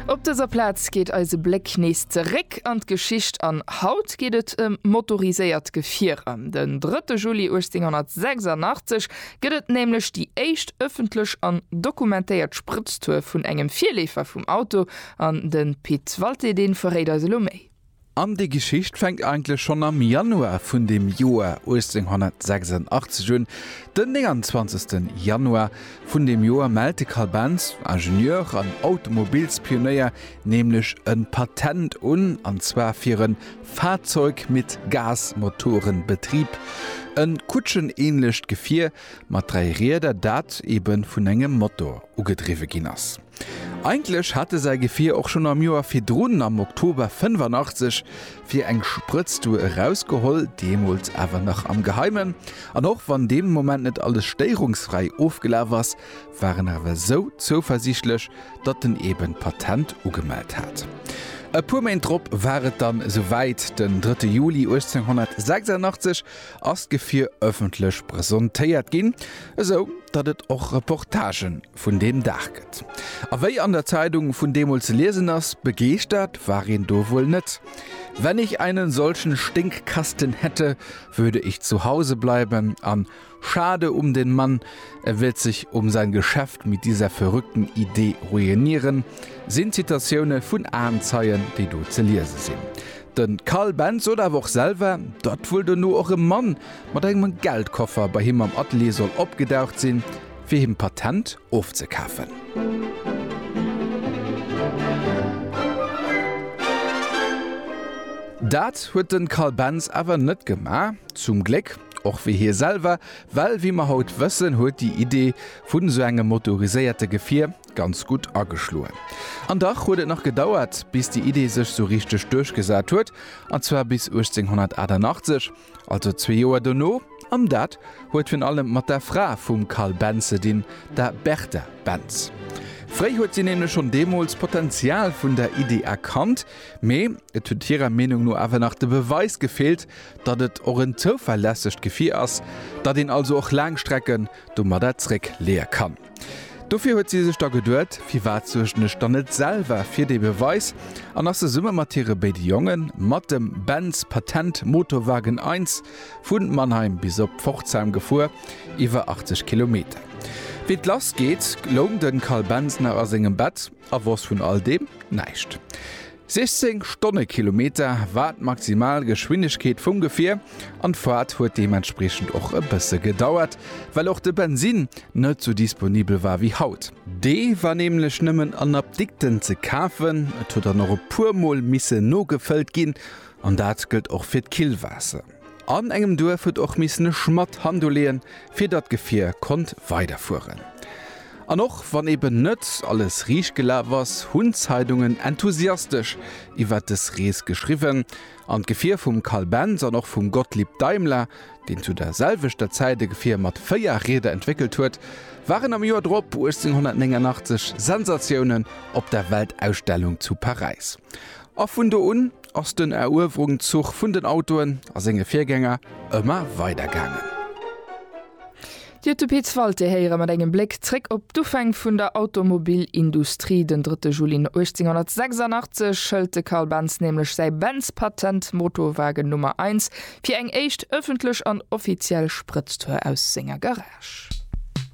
Op dëser Plaz geet eise Bléck nees zeréck an d'Geschicht an haut geet et ëm motoriséiert Gefierer. Den 3 Juli 1886 gëtt et nämlech déi éischt ëffentlech an dokumentéiert Sprëtztour vun engem Virleefer vum Auto an de Pit Walté dee verréit eis elo méi. An déi Geschicht fänkt eigentlech schonn am Januar vun dem Joer 1886 un. Den 29. Januar vun deem Joer mellt de Carl Benz, Ingenieur an Automobilspionéier, nämlech e Patent un, an zwar fir e Fahrzeug mit Gasmotorenbetrieb, e kutschenähnlecht Gefier mat dräi Rieder, dat eebe vun engem Motor ugedriwwe ginn ass. Eigentlech hat e säi Gefier och schonn am Joer virdrun, am Oktober 85, fir eng Sprëtztour erausgeholl, deemools awer nach am Geheimen. An och wann dee Moment net alles stéierungsfräi ofgelaf ass, war en awer esou zouversiichtlech, datt en eben d'Patent ugemellt hat. E puer Méint drop war et dann esou wäit, den 3 Juli 1886 ass d'Gefier ëffentlech presentéiert ginn, esou datt et och Reportagen vun deem Dag gëtt. A wéi an der Zeidung vun deemools ze liesen ass, begeeschtert war een do wuel net. Wenn ich einen solchen Stinkkasten hätte, würde ich zu Hause bleiben an Schade um den Mann, er wird sich um sein Geschäft mit dieser verrückten Idee ruinieren, sinn Zitatioune vun Aenzeien, déi do ze liese sinn. De Karl Benz sot awer och selwer, datt wuel dono och e Mann mat engem Geldkoffer bei him am Atelier soll opgedaucht sinn, fir him d'Patent ofzekafen. Dat huet de Carl Benz awer net gemaach, zum Gléck, och wéi hie selwer, well wéi mer haut wëssen, huet déi Idee vun esou engem motoriséierte Gefier ganz gutt ageschloen. An dach huet et nach gedauert, bis déi Idee sech sou richteg duerchgesat huet, an zwar bis 1888, Also zwee Joer dono, an dat huet virun allem mat der Fra vum Carl Benz ze dinn, der Bertha Benz. Fréi huet si nämlech schonn deemools d'Potenzial vun der Iddi erkannt, mee et huet hirer Meenung no awer nach de Beweis gefeelt, datt et och en zouverlässegt Gefier ass, datt een also och laang Strecken domadder zréckleeë kann. Dofir huet si sech da geduet, Firwat suergen ech dann net selwer fir dee Beweis? an ass zesumme mat hire béide Jongen, mat dem Benz Patent Motowagen I, vu Mannheim bis op Pforzheim gefuer, iwwer 80 Kilometer. Wéi d'Lass geet, loung de Carl Benz nach a sengem Bett a wosst vun all deem näischt. 16 Stonnekilometer war d'maximal Geschwindegkeet vum Gefier an d'Faart huet deementspriechend och e bësse gedauert, well och de Bensinn net sou disponibel war wéi haut. Dee war nämlech nëmmen an Apdikten ze kafen, et huet dann och e puer Mol misse nogefëllt ginn an dat gëllt och fir d'Killwaasser. An engem Duerf huet och missen e Schmadd Hand uleeën, fir datt d'Gefier konnt weiderfueren. An och wann eben net alles riicht gelaf ass, hunn d'Zeidungen enthusiastesch iwwer des Rees geschriwwen, an d'Gefier vum Carl Benz an och vum Gottlieb Daimler, deen zu der selwechter Zäit e Gefier mat véier Rieder entwéckelt huet, waren am Joer drop, 1889, Sensatiounen op der Weltausstellung zu Paräis. A vun do un ass den Eruewerungszug vun den Autoen a senge Virgänger ëmmer weider gaangen. Dir huet de Pit Walté héiere mat engem Bléck zréck op d'Ufäng vun der Automobilindustrie. Den 3 Juli 1886 hëlt de Carl Benz nämlech säi Benz-Patent, Motorwagen Nummer Eins, fir eng éischt ëffentlech an offiziell Sprëtztour aus senger Garage.